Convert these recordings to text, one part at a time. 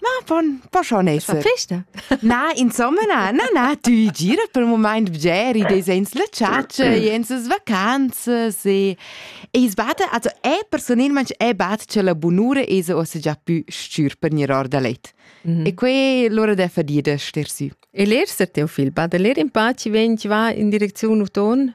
Ma von pochon es fa festa? Na, insomma na, na, na, tü girat per moment bger i desens la chatscha, jens as vacanzas e e es batta, also è personelmaing è batta cha la bunura esa ossa già pü stür per gnir or da let. Mhm. E que l'ura da fadia da ster sü. E ler se teu fil, bada ler in paci vegn va in direcziun uton?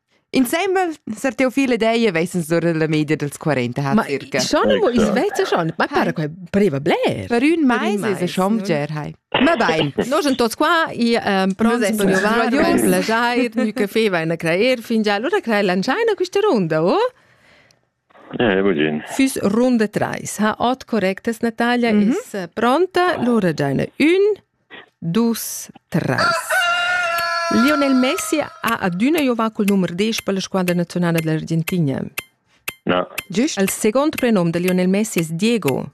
Insembel Sar Teofil ed ei vesens ora la media dels 40 ha Ma circa. schon amo is vezza schon, ma para che pareva bler. Per ün mais es schon bger hai. Ma bein, noi sind tots qua, i ähm, pronti per giovani, plagiar, mi caffè va in a creer fingià. Allora crei lanciai una questa runda, oh? Füss runda trais ha ot correctas Natalia mm -hmm. es pronta. Lura giaina ün, dus, tres. Lionel Messi ha adüna giovà cul numer 10 per la squadra nazionala dell'Argentina. No. Giust il second prenum de Lionel Messi es Diego.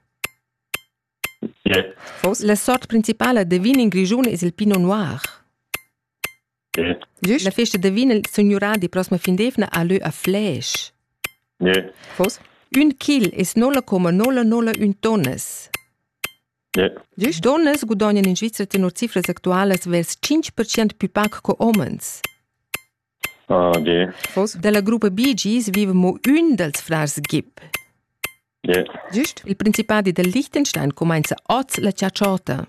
Yeah. La sort principala de vin in Grischun es il Pinot Noir. La festa da vin il signurà di prossima fin d'eivna ha lö a Fläsch. Ne. Fos? Ün chil es nolla coma nolla nolla ün tonnas. Ne. Diesch tonnas gudognan in Svizra tenor cifras actualas vers 5% più pac co homens. Ah, okay. Fos? Dalla gruppa Bee Gees vive mo ün dals frars Gibb. Ne. Giust? Il principadi del Liechtenstein comenza oz la ciaciota.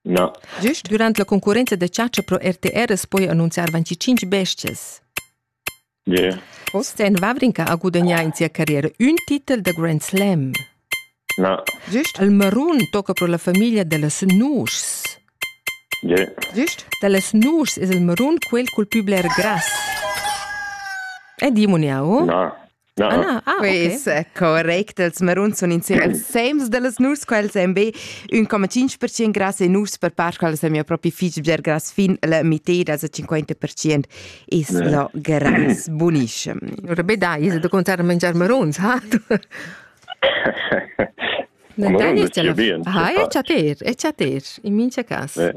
Na. Gist durant la concurrenza da chatscha pro RTR as poja annunziar 25 bestias. Yeah. Oz en Vavrinka ha gudagnà in sia carriera ün titel da Grand Slam. Na. Gist il marun tocca pro la famiglia da las nuschs. Yeah. Gist da las nuschs es il marun quel cul pü bler grass. E dimoniao? Na. No. Ah, na. ah Quis okay. correct, els maruns sun insemel sems da las nus, quels èn be ün coma tschinch per cient grass e nus per part, quels èn mia propi fich bger grass fin la miteda, a 50 per cient es yeah. lo grass bunissim. Ora be da, is da contar mangiar maruns, ha? Dai, è chaper, è chaper, in mincha cas. Eh.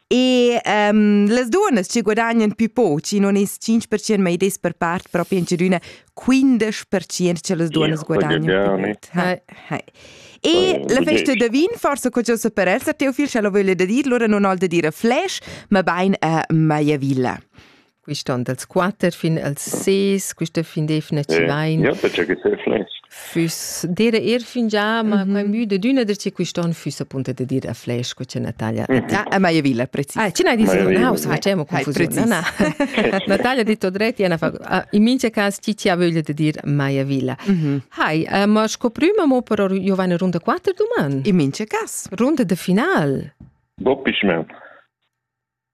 E um, las duas ci guadagnan più poch, i non es 5% ma id es per part propi in chadüna 15% che las duas guadagnan. E la festa da vin, forse co già per esser teo fil, sche lo voglia da dir, lura non ho da dire flash, ma bain a Maiavilla. quist on dals quatter fin als ses, quista fin definitivamaing. Ja, perché che flesch. Füss dire er fingià, ma mm -hmm. quai müde d'üna dir che quist'on füss appunto da dir a flesch co c'è Natalia. Mm -hmm. A Maia Villa, preciso. Ah, ce n'hai dis in house, ah, c'è mo confusione. Na, Natalia detto dreti, ena fa in mince cas chi ci ha voglia de dir Maia Villa. Mm -hmm. Hai, uh, ma scoprima mo per Giovanni Runde 4 domani. In mince cas, runde de final. Bob Pischman.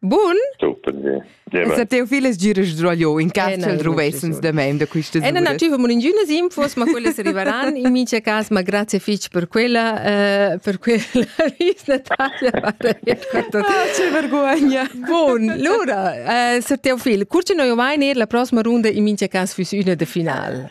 Bun! Sa teu fil es giras giroglio in cas ch'el druvessens da mem da quistas Ena nativa moringiunas infos, ma quelle arrivaran in mica cas, ma grazie fich per quella eh, per quella vis Natalia Che vergogna. Bun, lura, eh, sa teu fil, curce noi mai ner la prossima runda in mica cas füss üna de final.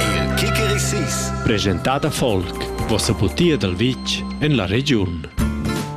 Il Kikeri Sis. Presentada folk. Vossa butia dal vitg en la regiun.